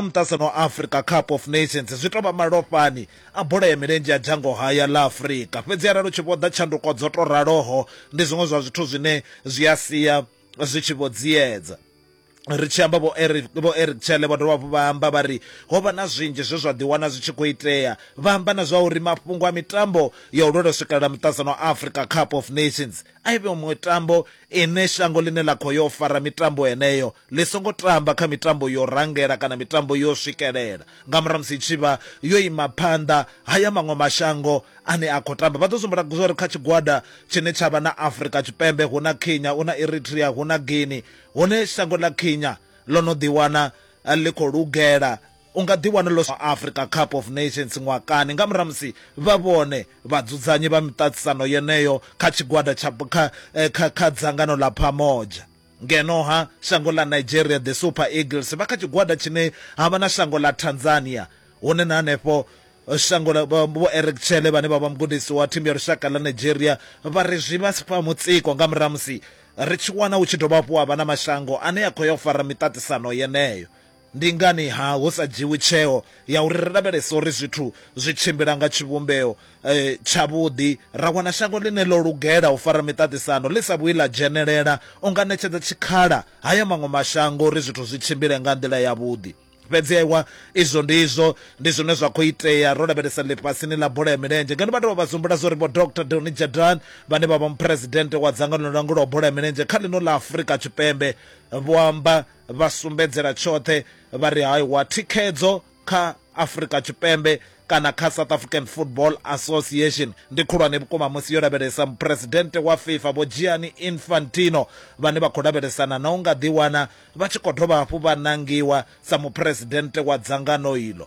muṱasen wa Africa Cup of Nations zwi tou vha malofhani a bola ya milenzhe ya dzhango haya ḽa Afrika. Fhedzi arali u tshi vhoḓa tshanduko dzo tou raloho, ndi zwiṅwe zwa zwithu zwine zwi a sia zwi tshi vho dziedza. ri tshi amba vho eric vho eric tshele vha dovha hafhu vha amba vha ri ho vha na zwinzhi zwe zwa ḓiwana zwi tshi khou itea vha amba na zwa uri mafhungo a mitambo ya u lwela swikelela muṱasano wa africa cup of nations a i vhe mitambo ine shango ḽine ḽa khou yo fara mitambo heneyo Ḽi songo tamba kha mitambo yo rangela kana mitambo yo swikelela nga murahu ha musi i tshi vha yo ima phanḓa ha ya maṅwe mashango ane a khou tamba. Vha ḓo sumbula zwa uri kha tshigwada tshine tsha vha na Afrika Tshipembe hu na Kenya, hu na Eritrea, hu na Guinea, hone shango ḽa Kenya ḽo no ḓiwana ḽi khou lugela u nga ḓiwana ḽo Africa Cup of Nations ṅwaha kani nga murahu ha musi vha vhone vhadzudzanyi vha miṱaṱisano yeneyo kha tshigwada tsha kha kha kha dzangano ḽa Pamoja. Ngeno-ha, shango ḽa Nigeria, The Super Eagles, vha kha tshigwada tshine ha vha na shango ḽa Tanzania, hune na henefho shango ḽa Vho Eric Chelle vhane vha vha mugudisi wa thimu ya lushaka ḽa Nigeria vha ri zwi vha fha mutsiko nga murahu ha musi ri tshi wana hu tshi dovha hafhu ha vha na mashango ane a khou ya u fara miṱaṱisano yeneyo. Ndi ngani-ha hu sa dzhiwi tsheo ya uri ri lavhelese uri zwithu zwi tshimbila nga tshivhumbeo tshavhuḓi, ra wana shango ḽine ḽo lugela u fara miṱaṱisano ḽi sa vhuyi ḽa dzhenelela? U nga ṋetshedza tshikhala ha ya maṅwe mashango uri zwithu zwi tshimbile nga nḓila yavhuḓi. Fhedzi ewa, izwo ndi izwo, ndi zwine zwa khou itea ro lavhelesa ḽifhasini ḽa bola ya milenzhe. Ngeno vha dovha vha zumbula zwa uri Vho Doctor Donny Jordaan, vhane vha vha muphuresidennde wa dzangano ḽi langulaho bola ya milenzhe kha ḽino ḽa Afrika Tshipembe, vho amba, vha sumbedzela tshoṱhe vha ri hai wa thikhedzo kha Afrika Tshipembe kana kha South African Football Association ndi khulwane vhukuma musi yo lavhelesa muphuresidennde wa FIFA Vho Gianni Infantino vhane vha khou lavhelesana na u nga ḓiwana vha tshi khou dovha hafhu vha nangiwa sa muphuresidennde wa dzangano iḽo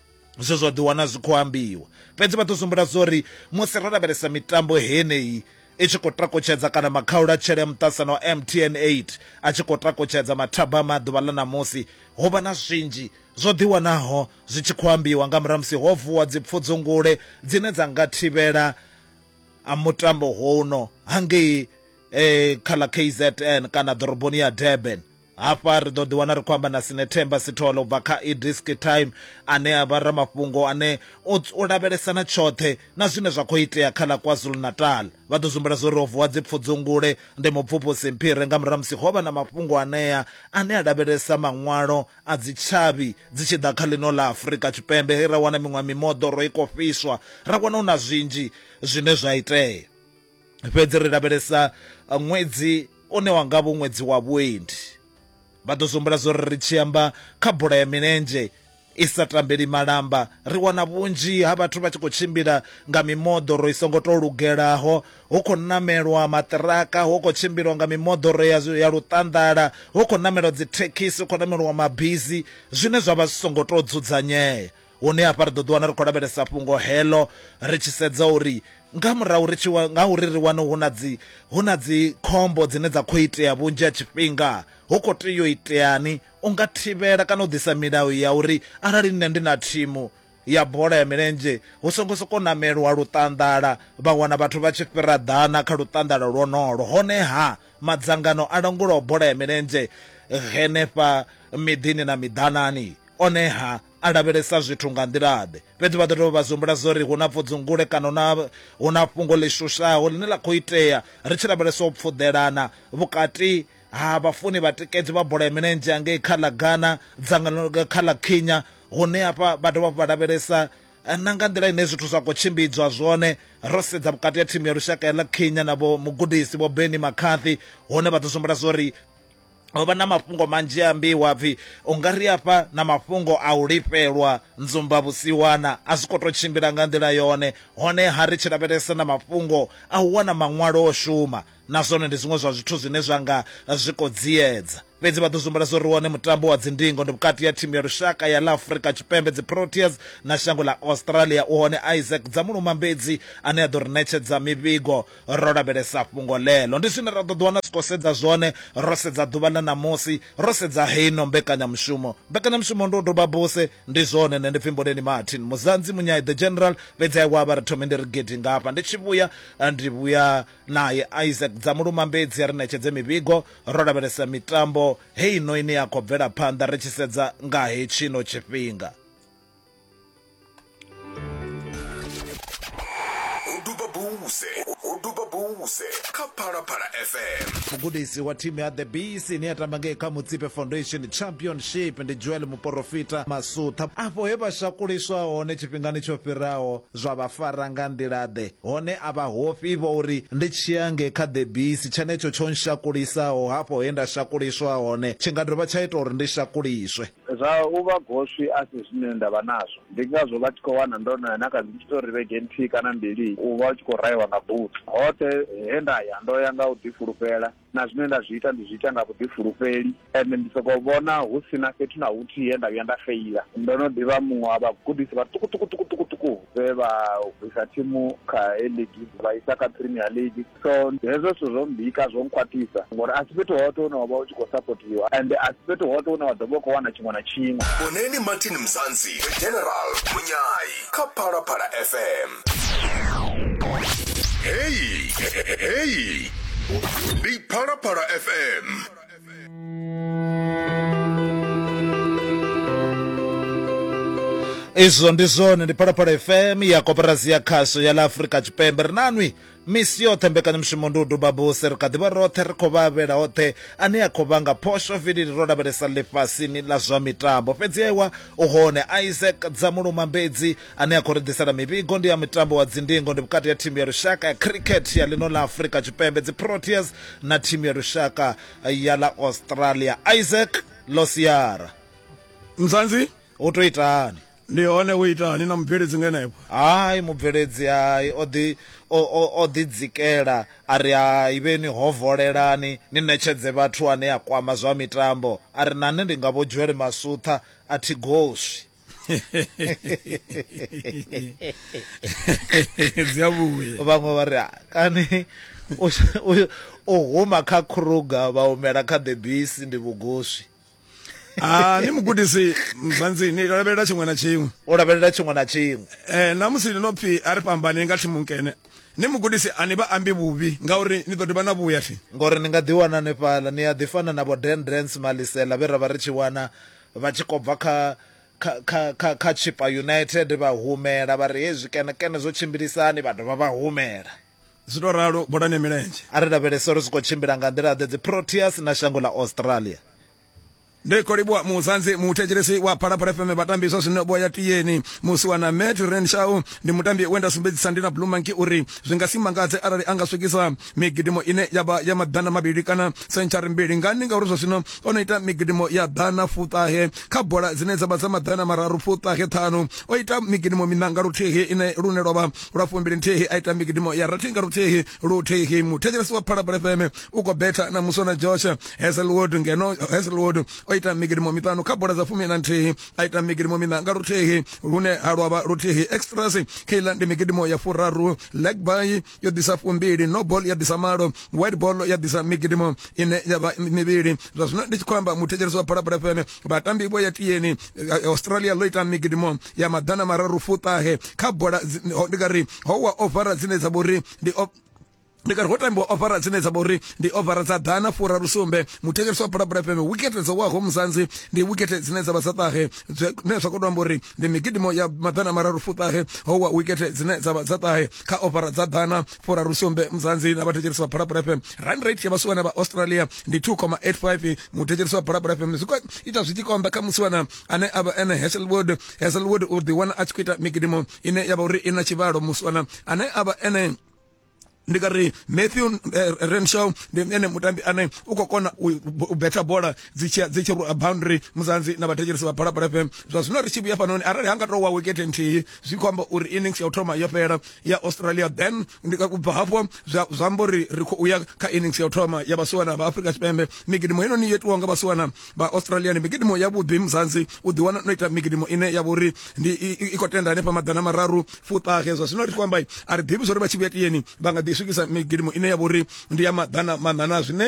zwe zwa ḓiwana zwi khou ambiwa fhedzi vha ḓo sumbula zwo ri musi ro lavhelesa mitambo heneyi i tshi khou takutshedza kana makhaula tshele muṱasano wa mtn 8 a tshi khou takutshedza mathaba a maḓuvha ḽa ṋamusi ho vha na zwinzhi zwo ḓiwanaho zwi tshi khou ambiwa nga murahu musi ho vuwa dzipfudzungule dzine dza nga thivhela a mutambo hono hangei eh, kha ḽa kzn kana ḓoroboni ya durban Hafha ri ḓo ḓiwana ri khou amba na Sinethemba Sithole u bva kha iDisk Time ane a vha ramafhungo ane o lavhelesa na tshoṱhe na zwine zwa khou itea kha ḽa KwaZulu-Natal. Vha ḓo zwimbula zwo ri ho vuwa dzipfudzungule ndi mupfuphusi Mphire nga murahu ha musi ho vha na mafhungo anea ane a lavhelesa maṅwalo a dzitshavhi dzi tshi ḓa kha ḽino ḽa Afrika Tshipembe he ra wana miṅwe mimoḓoro i khou fhiswa, ra wana hu na zwinzhi zwine zwa itea. fhedzi ri lavhelesa ṅwedzi une wa nga vho ṅwedzi wa vhuendi vha ḓo zwombula zwo ri ri tshi amba kha bola ya milenzhe i sa tambeli malamba ri wana vhunzhi ha vhathu vha tshi khou tshimbila nga mimoḓoro i songo tou lugelaho hu khou namelwa maṱiraka hu khou tshimbilwa nga mimoḓoro ya, ya luṱanḓala hu khou namelwa dzithekhisi hu khou namelwa mabizi zwine zwa vha zwi songo tou dzudzanyea Hone hafha ri ḓo ḓiwana ri khou lavhelesa fhungo heḽo ri tshi sedza uri nga murahu ri tshi nga uri ri wane hu na dzi hu na dzi khombo dzine dza khou itea vhunzhi ha tshifhinga hu khou tea u iteani u nga thivhela kana u ḓisa milayo ya uri arali nṋe ndi na thimu ya bola ya milenzhe hu songo soko namelwa luṱanḓala vha wana vhathu vha tshi fhira ḓana kha luṱanḓala lwonolo honeha madzangano a langulaho bola ya milenzhe henefha miḓini na miḓanani oneha a lavhelesa zwithu nga nḓila-ḓe. Fhedzi vha ḓo dovha vha zwi humbula zwo ri hu na pfudzungule kana hu na, hu na fhungo ḽi shushaho ḽine ḽa khou itea ri tshi lavhelesa u pfuḓelana vhukati ha vhafuni vhatikedzi vha bola ya milenzhe hangei kha ḽa Ghana, dzangano kha ḽa Kenya, hune hafha vha dovha hafhu vha lavhelesa na nga nḓila ine zwithu zwa khou tshimbidzwa zwone ro sedza vhukati ha thimu ya lushaka ya ḽa Kenya na vho mugudisi vho Benni McCarthy hune vha ḓo zwi humbula zwo ri ho vha na mafhungo manzhi a ambiwa pfhi u nga ri afha na mafhungo a u lifhelwa nzumba vhusiwana a zwi khou tou tshimbila nga nḓila yone honeha ri tshi lavhelesa na mafhungo a u wana maṅwalo o shuma na zwone ndi zwiṅwe zwa zwithu zwine zwa nga zwi khou dziedza fhedzi vha ḓo zwi humbula zwo ri wone mutambo wa dzindingo ndi vhukati ha thimu ya lushaka ya ḽa afurika tshipembe dziproteas na shango ḽa australia u hone isaac dza mulumambedzi ane a ḓo ri ṋetshedza mivhigo ro lavhelesa fhungo ḽeḽo. Ndi zwine ra ḓo ḓiwana ri tshi khou sedza zwone ro sedza ḓuvha ḽa ṋamusi, ro sedza heino mbekanyamushumo. Mbekanyamushumo ndi u doba buse, ndi zwone. Nṋe ndi pfi Mboleni Martin Muzanzi Munyai, The General, fhedzi a iwavha ri thome ndi ri gidi nga hafha. Ndi tshi vhuya ndi vhuya nae Isaac Dzamulumambedzi a ri ṋetshedze mivhigo. Ro lavhelesa mitambo heino ine ya khou bvela phanḓa ri tshi sedza nga hetshino tshifhinga. mugudisi wa thimu ya the bees ine ya tamba ngei kha mutsipe foundation championship ndi joel muporofita masutha afho he vha shakuliswa hone tshifhingani tsho fhiraho zwa vha fara nga nḓila-ḓe hone a vha hofhi vho uri ndi tshiya nge kha the bees tshenetsho tsho nshakulisaho hafho he nda shakuliswa hone tshi nga dovha tsha ita uri ndi shakuliswe Zwa u vha goswi a si zwine nda vha nazwo. Ndi ngazwo vha tshi khou wana ndo no ya na kha dzi tshiṱori vhege nthihi kana mbili u vha u tshi khou raiwa nga butsu. Hoṱhe he nda ya ndo ya nga u ḓifulufhela, na zwine nda zwi ita ndi zwi ita nga vhuḓifulufheli, ende ndi sokou vhona hu si na fhethu na huthihi he nda vhuya nda feila. Ndo no ḓi vha muṅwe wa vhagudisi vhaṱukuṱukuṱukuṱuku vhe vha bvisa thimu kha A-League vha isa kha Premier League. so hezwo zwithu zwo mbika zwo nkhwaṱhisa ngori a si fhethu hoṱhe hune wa vha u tshi khou sapotiwa and a si fhethu hoṱhe hune wa ḓo vha u khou wana tshiṅwe na tshiṅwe vhoneni martin mzanzi general munyai kha phalaphala fm heyi heyi ndi phalaphala fm izwo ndi zwone ndi phalaphala fm ya koporasi ya khasho ya ḽa afurika tshipembe ri nanwi Misi yoṱhe mbekanyamushumo ndi u duba buse, ri kha ḓi vha roṱhe ri khou vha avhela oṱhe ane a khou vhanga phosho vilili ro lavhelesa ḽifhasini ḽa zwa mitambo. Fhedzi ewa u hone Isaac Dzamuluma Mbedzi ane a khou ri ḓisela mivhigo. Ndi ya mutambo wa dzindingo, ndi vhukati ha thimu ya lushaka ya khirikhethe ya ḽino ḽa Afrika Tshipembe, dziProteas, na thimu ya lushaka ya ḽa Australia. Isaac, Ḽo siara. Mzansi. U tou itani? ndi hone u itani na mubveledzi nga enevho hai mubveledzi hai o ḓi o, o, o ḓi dzikela a ri hai vheni ho volelani ni ṋetshedze vhathu ane a kwama zwa mitambo a ri na nṋe ndi nga vho dzwele masutha a thi goswi dzi a vhuya vhaṅwe vha ri "Ah, kani u- u- u huma kha kruga vha humela kha the bisi ndi vhugoswi Ah, ni mugudisi mbanzi ni lavhelela tshiṅwe na tshiṅwe o lavhelela tshiṅwe na tshiṅwe eh na musi ni no pfi a ri fhambane nga thimu nkene ni mugudisi a ni vha ambi vhuvhi ngauri ni ḓo dovha na vhuya thi ngori ni nga ḓi wana ni fhala ni a ḓi fana na vho Dan Drance Malisela vhe ra vha ri tshi wana vha tshi kho bva kha kha kha kha kha Chipa United vha humela vha ri hezwi kene kene zwo tshimbilisani vha dovha vha humela zwi to ralo bolani milenzhe a ri lavhelese uri zwi khou tshimbila nga nḓila ḓe dzi proteas na shango ḽa australia ndi khou livhuwa muzanzi muthetshelesi wa phalaphala fm vhatambi zwa zwino vho ya tiyeni musi wa na met renshau ndi mutambi we nda sumbedzisa ndi na blue monkey uri zwi nga si mangadze arali a nga swikisa migidimo ine ya vha ya maḓana mavhili kana sentshari mbili ngani ngauri zwa zwino o no ita migidimo ya ḓana fuṱahe kha bola dzine dza vha dza maḓana mararu fuṱahe ṱhanu o ita migidimo miṋa nga luthihi ine lune lwa vha lwa fumbili nthihi a ita migidimo ya rathi nga luthihi luthihi muthetshelesi wa phalabula fm u khou betha na musona josh heselwood ngeno heselwood o ita migidimo miṱanu kha bola dza fumi na nthihi a ita migidimo miṋa nga luthihi lune ha lwavha luthihi extras kheila ndi migidimo ya furaru legby yo ḓisa fumbili nobol ya ḓisa malo white ball ya ḓisa migidimo ine ya vha mivhili zwa zwino ndi tshi khou amba muthetshelesi wa phalabula fm vhatambi vho ya tiyeni eh, australia ḽo ita migidimo ya maḓana mararu fuṱahe kha bola ndi nga ri ho wa ovara dzine dza vha uri ndi ndi kari ho tambiwa ofara dzine dza vha uri ndi ofara dza ḓana furaru sumbe muthetshelesi wa bulabula fm wikete dzo waho muzanzi ndi wikete dzine dza vha dza ṱahe zwine zwa khou to amba uri ndi migidimo ya maḓana mararu fuṱahe ho wa wikete dzine dza vha dza ṱahe kha ofara dza ḓana furaru sumbe muzanzi na vhathetshelesi vha phalaphala fm rand rate ya vhasiwana vha australia ndi 2,85 muthetshelesi wa phalaphala fm zwi khou ita zwi tshi konḓa kha musiwana ane a vha ene heselwood heselwood u ḓiwana a tshi khou ita migidimo ine ya vha uri i na tshivhalo musiwana ane a vha ene ndi nga ri matthew eh, renshaw ndi ene mutambi ane u khou kona u u betha bola dzi tshi dzi tshi rwa boundary muzanzi na vhathetshelesi vha phalaphala fm zwa zwino ri tshi vhuya fanoni arali ha nga tou wa wekete nthihi zwi khou amba uri innings ya u thoma yo fhela ya australia then ndi ka kubva hafho zwa zwa amba uri ri khou ya kha innings ya u thoma ya vhasiwana vha afrika tshipembe migidimo heinoni yo itiwaho nga vhasiwana vha australia ndi migidimo ya vhuḓi muzanzi u ḓiwana no ita migidimo ine ya vha uri ndi i- i i khou tenda hanefha maḓana mararu fuṱahe zwa zwino ri tshi khou amba a ri ḓivhi zwa uri vha tshi vhuya tiyeni vha nga ḓi swikisa migidimo ine ya vha uri ndi ya maḓana maṋana zwine